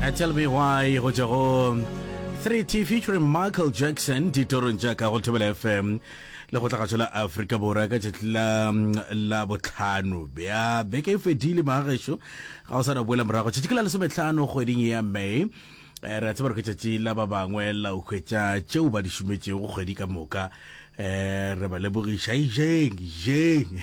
Uh, tell me why go tšwa go 3t featuring michael jackson ditorong tša ka go thobela fm le go tlagatšo la afrika borwa ka tšatši la la botlhano bja beke e fedile maagešo ga o sa na boela morago tšatši ke la lesometlhano kgweding ya may eh, re a tseba re ke tšatši la ba bangwe la o hwetša tšeo ba di šometšego kgwedi ka moka um re ba lebogiša ijeng ijeng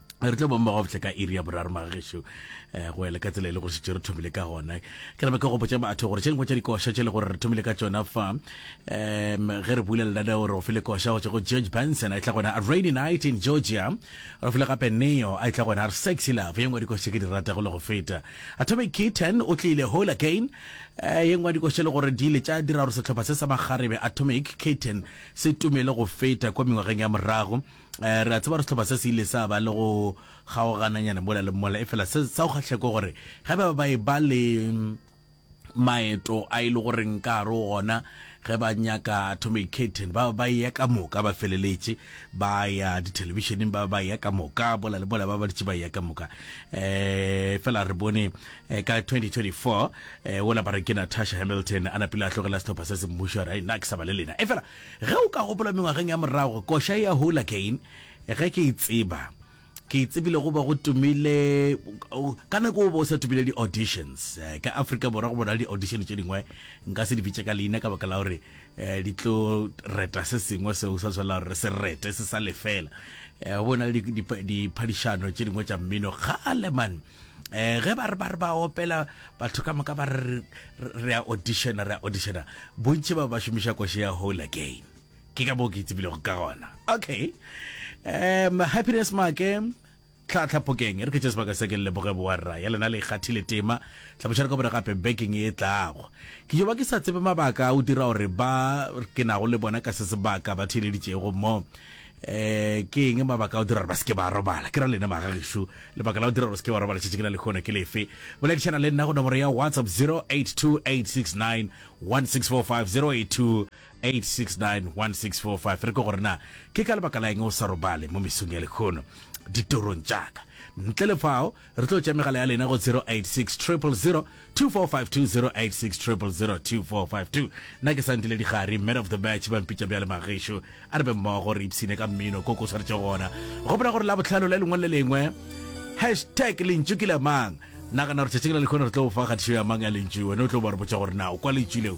re tlo bong ba go botle ka iri ya boraro magagešo um eh, go ele ka tsela e le go šetse re thomile ka gona ke rebe ka go botsa batho gore tšeng go tša dikoša tše le gore re thomile ka tsona fa um ge re bule lenane gore o file koša go tswa go george benson a e tla gona a rainy night in georgia re file gape neo a e tla gona a re sexy love ye nngwe dikoša ke di rata go le go feta atomic kitten o tlile whole again um ye nngwe dikoša le gore di ile tša dira gore setlhopha se sa makgarebe atomic kitten se tumele go feta kwa mengwageng ya morago Eh, re a tseba gore setlhopha se se ile sa ba le go kgaogananyana mola le mola e fela se sa go kgatlheko gore ge ba ba e ba le maeto a e le goreng ka gare o gona ge ba nyaka atomic caton ba ba ya ka moka ba feleletše ba ya dithelebišeneng ba ba ya ka moka bola le bola ba ba ditše ba ya ka moka um fela re bone eh, ka 2024 um ola ba re ke natasha hamilton a napile a tlogela setlhopha se se mmušo a re "Ai, nna ke sa ba le lena e fela Ge o ka gopola mengwageng ya morago, koša e a hola Kane, ge ke e tseba. Ke e tsebile go be go tumile, ka nako o be o sa tumile di-auditions. Ka Afrika Borwa go bona le di-audition tše dingwe, nka se di bitše ka leina ka baka la gore di tlo reta se sengwe seo sa swanela gore re se rete, se sa lefela. Go be go na le diphadišano tše dingwe tša mmino kgale man. eh ge ba re ba re ba opela batho ka moka ba re re a auditiona re a auditiona bontši ba ba šomiša koše ya whole again ke ka boo ke itsebilego ka gona okay um happiness make tlhatlhapokeng re ke tše sebaka se ke leboge boa rra ya lena le ikgathile tema tlhabošare ka bore gape baking e tlago ke jo ba ke sa tsebe mabaka o dira gore ba ke nago le bona ka se sebaka ba theeleditšego mo um ke eng mabaka a o dira gore ba se ke ba robala ke ra lena magagešu lebaka la o dira gore se ke ba robala tšhetše ke na le kgono ke lefe boledišana le nna go nomoro ya whatsapp 0828691645 0828691645 re ko gore na ke ka lebaka la eng o sa robale mo mesong ya lekgono ditorong tšaka ntle le fao Re tlo tša megala ya lena go 0860002452 0860002452. Nna ke Sandile Digari, man of the match, ba mpitša bjale Magešo. A re be mmogo re ipshine ka mmino ko ko swaretšego gona. Gopola gore Labohlano le lengwe le lengwe, hashtag lentšu ke la mang. Nagana gore tšatšing la lekhono re tlo go fa kgatišo ya mang ya lentšu, wena o tlo ba re botša gore na o kwa lentšu leo